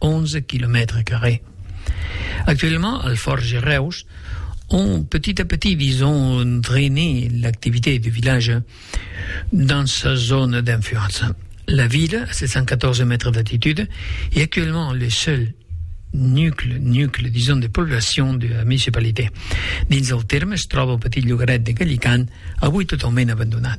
11 quilomètres carrés. Actuellement, al Forge Reus, on petit à petit vison drainer l'activité du village dans sa zone d'influence. La ville, à 714 mètres d'altitude, est actuellement le seul nucle, nucle, disons, de population de la municipalité. Dins el terme es troba un petit llogaret de Gallican, avui totalment abandonat.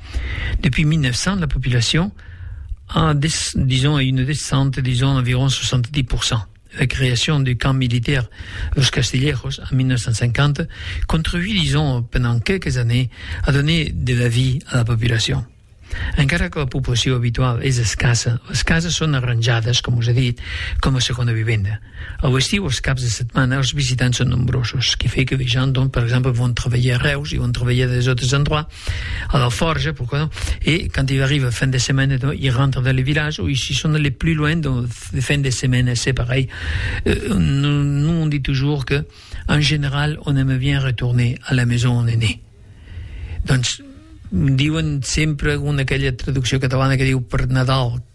Depuis 1900, la population a, des, disons, a une descente, disons, environ 70%. La création du camp militaire Los Castillejos en 1950 contribuit, disons, pendant quelques années, à donner de la vie à la population. Encara que la població habitual és escassa, les cases són arranjadas, com us he dit, com a segona vivenda. Au estiu, es caps de setmana, es visitants son nombrosos, que fait que de gens, donc, per exemple, vont trabalhar a Reus e vont trabalhar des autres endroits, a la Forja, pourquoi non, e quand ils arrivent fin de setmana, donc, ils rentrent dans le village, ou si son allés plus loin, donc, de fin de setmana, c'est pareil. Euh, nous, nous, on dit toujours que, en général, on aime bien retourner à la maison on est né. Donc, diuen sempre una aquella traducció catalana que diu per Nadal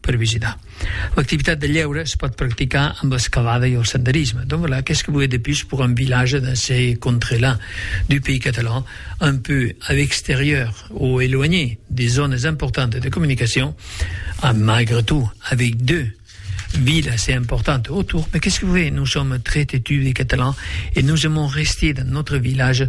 Per visitar. L'activitat de lhéure es pòt practicar amb l'escalada e el senderisme. Donvelà, qu'es que voler de pus pour un village dans ce contrelà du pays catalan, un peu a l'extérieur o éloigné des zònes importantes de comunicacion, amb malgre tot avec deux villes assez importantes autour, mai qu'es que voler, nos sòm très têtus les Catalans e nos aimons rester dans notre village,